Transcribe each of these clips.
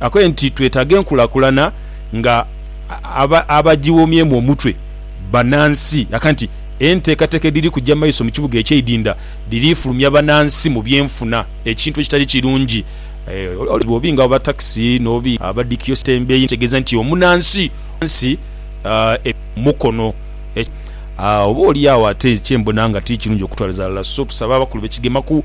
Akoye nti twetaaga enkulakulana nga abagiwomyemu omutwe banansi aka nti enteekateeka edhiri kuja maiso mu kibuga ekye Idinda dhiri fulumya banansi mu byenfuna ekintu ekitali kirungi olw'obuzibu obubi nga obwa takisi n'obubi abadhikio sitembeyi ekitegeeza nti omunansi wansi ebintu mukono oba oli agho ate kyembona nga tikirungi okutwaliza ghalala so tusaba abakulu be kigemaku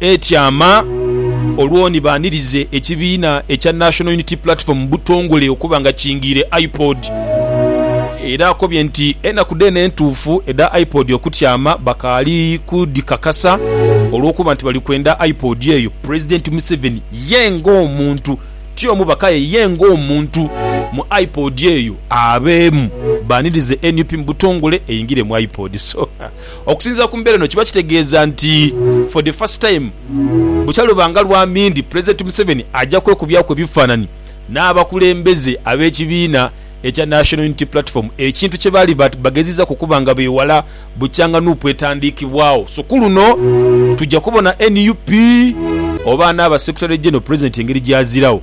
etyama olwo ni baanirize ekibiina ekya National Unity Platform mu butongole okuba nga kingiire IPOD. Era akobye nti enaku dheene entuufu edha IPOD okutyama bakaali kudhikakasa olw'okuba nti bali kwenda IPOD eyo Pulezidenti Museveni ye ng'omuntu, ti omubaka aye ye ng'omuntu mu IPOD eyo abeemu. Baanirize nup mu butongole eyingire mu IPOD. Okusinziira ku mbeera eno kiba kitegeeza nti for the first time bukya lubanga lwa mindi Pulezidenti Museveni aja kwekubyaku ebifaananyi n'abakulembeze ab'ekibiina ekya National Unity Platform ekintu kye baali bageziza kukuba nga beewala bukyanga nup etandiikibwaawo. So ku luno tuja kubona nup oba anaaba Secretary General Pulezidenti engeri gy'azirawo.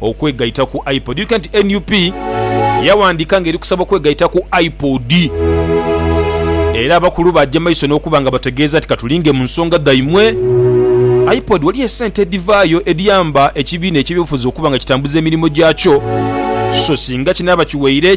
okwegaita ku iPod. Irika nti nup yawandiika nga eri kusaba okwegaita ku iPod era abakulu baagya maiso n'okuba nga bategeeza nti katulinge mu nsonga dhaimwe. Ipod waliyo esente edhivaayo edhiyamba ekibiina eky'ebyobufuzi okuba nga kitambuza emirimu gyakyo so singa kinaaba kiweire